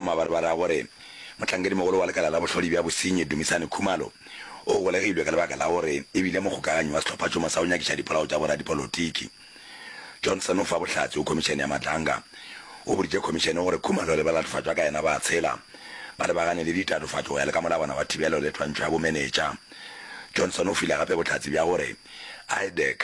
Mabarebare a gore mohlankedi-mogolo wa lekala la bohlodi bja bosenyi Dumisani Khumalo o golegilwe ka lebaka la gore e bile mokgokaganyi wa sehlophatšhomo sa go nyakiša dipolao tša boradipolotiki. Johnson o fa bohlatse go khomišene ya Madlanga. O boditše khomišene gore Khumalo le balatofadjwa ka yena ba tshela ba lebagane le ditatofatšo go ya le ka molawana wa thibelo le twantšho ya bomenetša. Johnson o file gape bohlatse bja gore IDEC,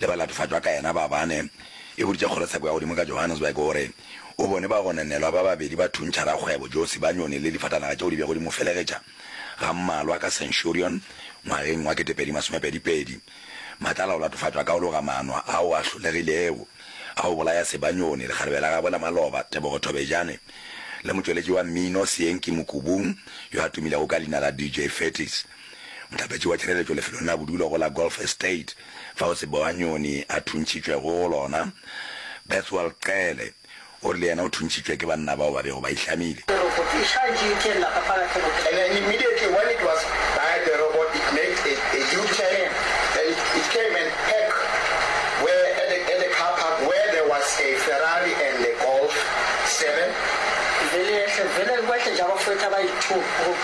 le ba latofatšwa ka yena ba bane, e boditše kgorotsheko ya godimo ka Johannesburg gore o bone bagononelwa ba babedi ba thuntšha rakgwebo Josi Banyoni le difatanaga tšeo di bego di mo felegetša ga mmalwa ka Centurion ngwageng wa ketepedi masome pedi pedi. Matlala o latofatšwa ka go loga manwa ao a hlolegilego a go bolaya Sebanyoni le kgarebe la gagwe la maloba Tebogo Thobejane le motšweletši wa mmino Seenki Mokubung yo a tumilego ka leina la DJ Fetis. Mohlapetši wa tšhireletšo lefelong la bodulo go la Golf Estate fao Seboanyoni a thuntšhitšwego go lona, Bethwell Cele, o rile yena o thuntšhitšwe ke banna bao ba bego ba ihlamile. And then immediately when it was by the robot it made a, a U-turn and it, it came and park where at the, at the car park where there was a Ferrari and a Golf 7.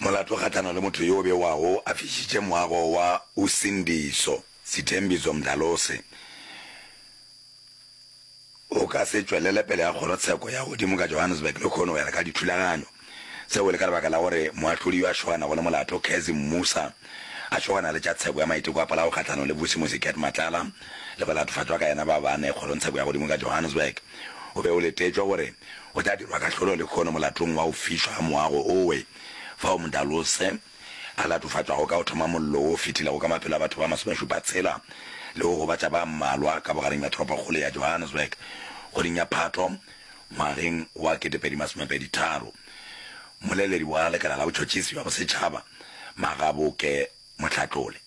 Molato kgatlhanong le motho yo o bewago a fišitše moago wa Usindiso Sithembiso Mdlalose o ka se tšwelele pele ga Kgorotsheko ya Godimo ka Johannesburg lehono go ya ka dithulaganyo. Seo e le ka lebaka la gore moahlodi yo a šoganago le molato Khezi Mmusa a šogana le tša tsheko ya maiteko a polao kgatlhanong le Vusi Mosiket Matlala le go latofatšwa ka yena ba bane Kgorotsheko ya Godimo ka Johannesburg o be o letetšwe gore Go tla dirwa kahlolo lekhono molatong wa go fišwa ga moago owe, fao Mdalose a latofatšwago ka go thoma mollo wo o fetilego ka maphelo a batho ba masomešupatshela le go gobatša ba mmalwa ka bogareng bja toropokgolo ya Johannesburg kgweding ya Phato ngwageng wa ketepedi masomepedi tharo. Moleledi wa Lekala la Botšhotšhisi bja Bosetšhaba, Magaboke Mohlatlole.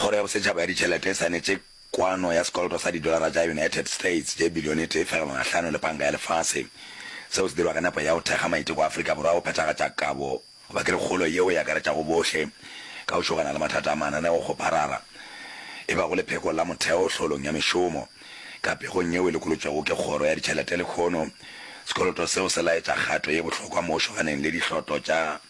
Kgoro ya Bosetšhaba ya Ditšhelete e saenetše kwano ya sekoloto sa didolara tša United States tše bilione tee fegelwana a hlano le Panka ya Lefase. Seo se dirwa ka nepo ya go thekga maiteko a Afrika Borwa a go phethagatša kabo bakirikgolo yeo e akaretšago bohle ka go tšhogana le mathata a mananeo kgoparara e bago le pheko la motheo tlholong ya mešomo. Ka pegong yeo e lokolotšwego ke Kgoro ya Ditšhelete lehono, sekoloto seo se laetša kgato ye bohlokwa mo šoganeng le dihloto tša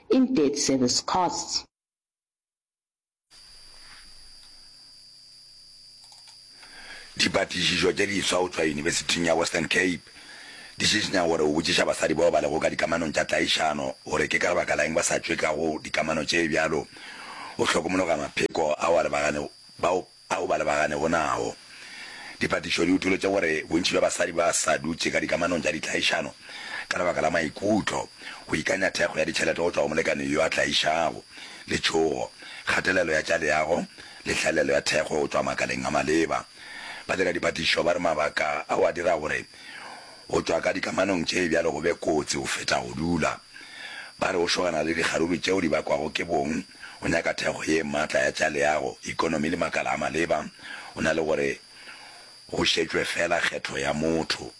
in debt service costs. Dipatlišišo tše diswa go tšwa Yunibesithing ya Western Cape di šišinya gore go botšiša basadi bao ba lego ka dikamanong tša tlaišano gore ke ka lebaka la eng ba sa tšwe ka go dikamano tše bjalo go hlokomologa mapheko ao a lebaganeng bao ao ba lebaganeggo nao. Dipatišišo di utolotše gore bontši bja basadi ba sa dutše ka dikamanong tša ditlaišano ka lebaka la maikutlo, go ikanya thekgo ya ditšhelete go tšwa go molekane yo a tlaišago, letšhogo, kgatelelo ya tša leago le tlhaelelo ya thekgo go tšwa makaleng a maleba. Badiradiphatišišo ba re mabaka ao a dira gore go tšwa ka dikamanong tše bjalo go be kotsi go feta go dula. Ba re go šogana le dikgaruru tšeo di bakwago ke bong, o nyaka thekgo ye maatla ya tša leago, ekonomi le makala a maleba, go na le gore go šetšwe feela kgetho ya motho.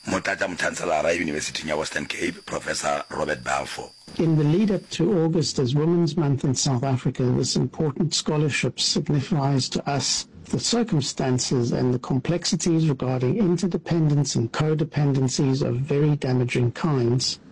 Motlatšamothanselara Yunibesithing ya Western Cape, Professor Robert Balfour. In the lead-up to August as Women's Month in South Africa, this important scholarship signifies to us the circumstances and the complexities regarding interdependence and codependencies of very damaging kinds.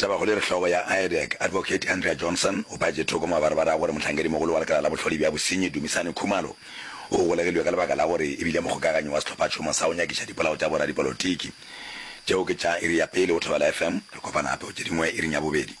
Tabakgolo e re hlogo ya IADEC, Advocate Andrea Johnson, o patše thoko mabarabara a gore mohlankedi-mogolo wa lekala la bohloli bja bosenyi Dumisani Khumalo o golegilwe ka lebaka la gore e bile mokgokaganyi wa sehlophatšhomo sa go nyakiša dipolao tša boradipolotiki. Tšeo ke tša iri ya pele go Thobela FM. Re kopana gape go tše dingwe iring ya bobedi.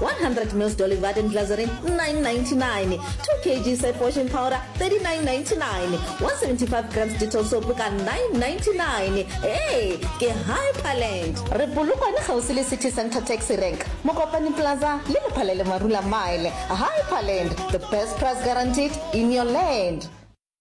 100 mils Dollyvarden Glycerin, 999, 2 kg Safe Washing Powder, 3999, 175 grams Dettol Soap ka 999. Ee, ke High Talent! Re Polokwane kgauswi le City Centre Taxi Rank, Mokopane Plaza le Lephalale Marula Mile. High Talent, the best price guaranteed in your land!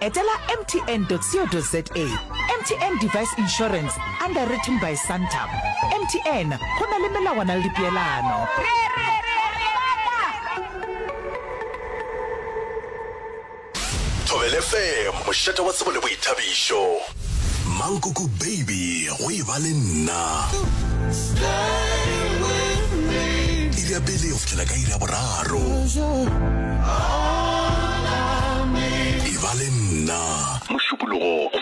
Etela mtn.co.za MTN Device Insurance, underwritten by Santam. MTN, go na le melawana le dipeelano. Thobela FM, mošate wa tsebo le boithabišo. Mankoko baby go e ba le nna. Iri ya pele go fitlhela ka iri ya boraro. E ba le nna. Mošupologo go